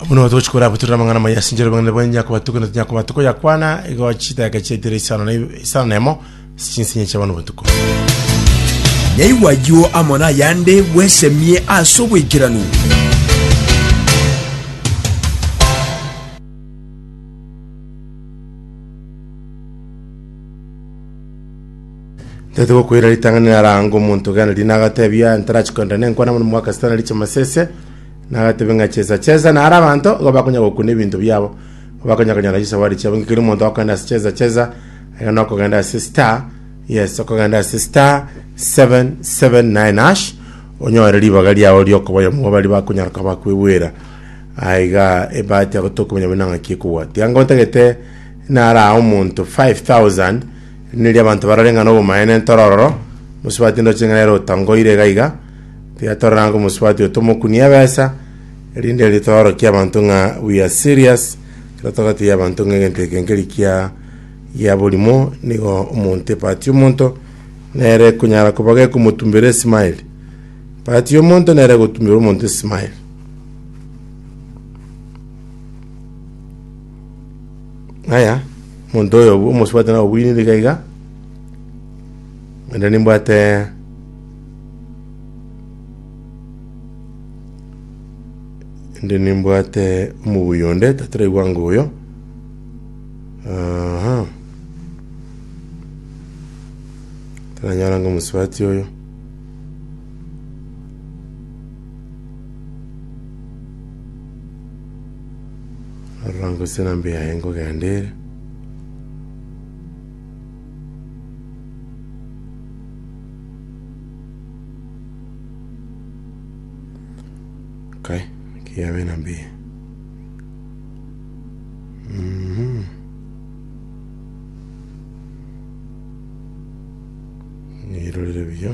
Buna otogochia korabutorere amang'ana amaya ase enchera y'obong'aini bwaye, inyakoba tuko na tinyakoba tuko yakwana, igo chidaka chiaitire isano na isano na emo ase chinsinye chia bono botuko. Naigwe ayio amo nayande bwesemie ase oboikeranu. Tete gokwera ritang'ani naranga omonto gana rina agatebia ntarachi kwenda nenkwana mono mwaka sitana riche masese nagatebe ng'a chesa chesa nara abanto igo bakonya gokuna ebinto biabo bakonya konyara chisawari chiabo ngikeri omonto akogenda ase chesa chesa aya nokogenda ase star yes okogenda ase star 779 hash onyore ribaga riao riokoboyomwa bari bakonyara koba bakwebwera Aiga ebahati agwo tokomanya buna ng'aki ekogwa. Tiga nka otagete narae omonto 5,000 rinde riria abanto barore ng'a nobomaene ntoro ororo, mosubati ndoche ng'a nere otangoire iga iga. Tiga torore ng'a omosubati oyo tomokunie ebesa rinde erio toorokie abanto ng'a we are serious ekero togatebia abanto ng'a egento eke nkeri kia gia borimo nigo omonto ebahati y'omonto nere ekonyara koba gekomotumbera esmile. Ebahati y'omonto nere egotumbera omonto esmile. Ng'aya, omonto oyo obu- omosubati nabo obwinire iga iga, ende nimbwate ende nimbwate omoguyo onde tataraigwa anga oyo. Aha. Taranyora anga omosubati oyo. Aroro angosera mbe yaye nkogenda ere. Kai, ki yabe na mbe. Mhm. Nirorere buya.